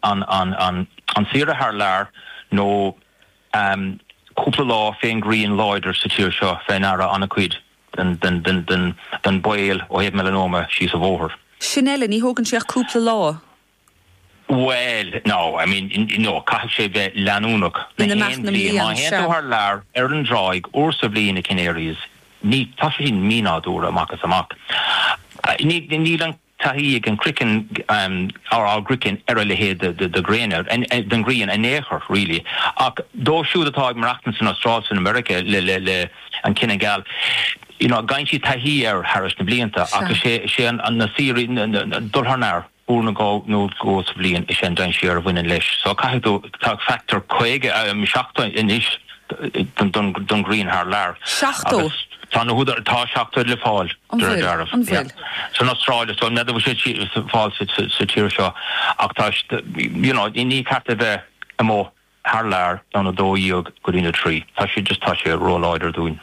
an an saoire thar lear nó cúpla lá fén ghrian láidir sa tír seo fé ndeara an-cuid den baol ó thaobh meileanóma síos an bhóthar. Bhuel, now, I mean, you know, caithfidh sé bheith leanúnach má théann tú thar lear ar an dtráigh uair sa bhliain, na Canaries, tá sé sin mínádúrtha amach is amach. taithí ag an croiceann ár gcroiceann ar a leithéid de ghréin den ngrian in aon chor really ach dóibh siúd atá ag maireachtaint san Astráil san America le le an cine geal you know faigheann siad taithí air thairis na blianta ach is é sé an na saoirí ag dul thar lear uair nó dhó nó dhó sa bhliain is ea an dainséar a bhaineann leis so caithfidh tú tá factor 50 nó 70 anois don ghrian thar lear. 70? Tá 70 le fáil, de réir dealraimh, san Astráil. So, n'fheadar bhfuil sé ar fáil sa tír seo ach tá you know, ní ní ceart a bheith amuigh thar lear ón 12 go dtí na 3. Tá sé just tá sé ró-láidir dúinn.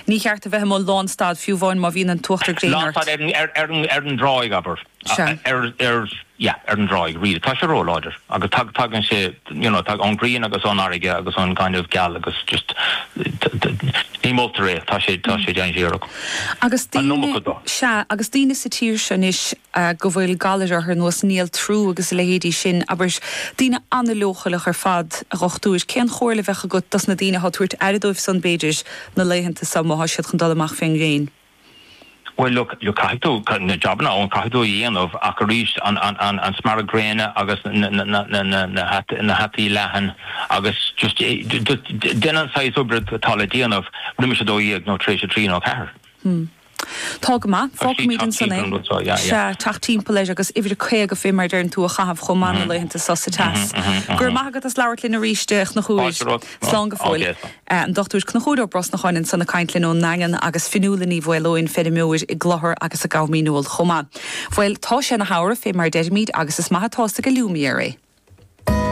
Ní cheart a bheith amuigh lánstad, fiú amháin má bhíonn an t-uachtar gréine ort. Ar an dtráigh, abair. Yeah ar an dtráigh really. Tá sé róláidir agus tagann sé you know ón ghrian agus ón fharraige agus ón ngaineamh geal agus just ní moltar é, tá sé dainséarach. Agus daoine sa tír seo anois a go bhfuil galair orthu ar nós, néaltrú agus a leithéidí sin, abair, daoine an-leochaileach ar fad, a Chnochúir, cén chomhairle a bheadh agat dos na daoine atá ag tabhairt aire dóibh san, b'fhéidir, na laethanta so, má thá siad chun dul amach fén ngréin? Bhuel, look, caithfidh, tá na jabanna ann, caithfidh tú a dhéanamh ach arís, an smearadh gréine agus na hataí leathan agus just, just déan an saghas oibre atá le déanamh roimis a dó dhéag nó tar éis a trí nó a ceathair. Tá go maith. Fágfaimid ansan é. Sea, teacht timpeall leis agus uimhir a caoga fé mar a deireann tú a chaitheamh chomh maith na laethanta so sa teas. Go raibh maith agat as labhairt linn aríst a Chnochúir. Slán go fóill. An Dr. Cnochúir Ó Brosnacháin ansan ag caint linn ón nDaingean agus Fionnuala Ní Mhaoleoin, feirmeoir i gCloichear agus i gCom Dhíneol chomh maith. Bhuel, tá sé ina shamhradh fé mar a deirimid agus is maith atá a fhios ag allumiere é.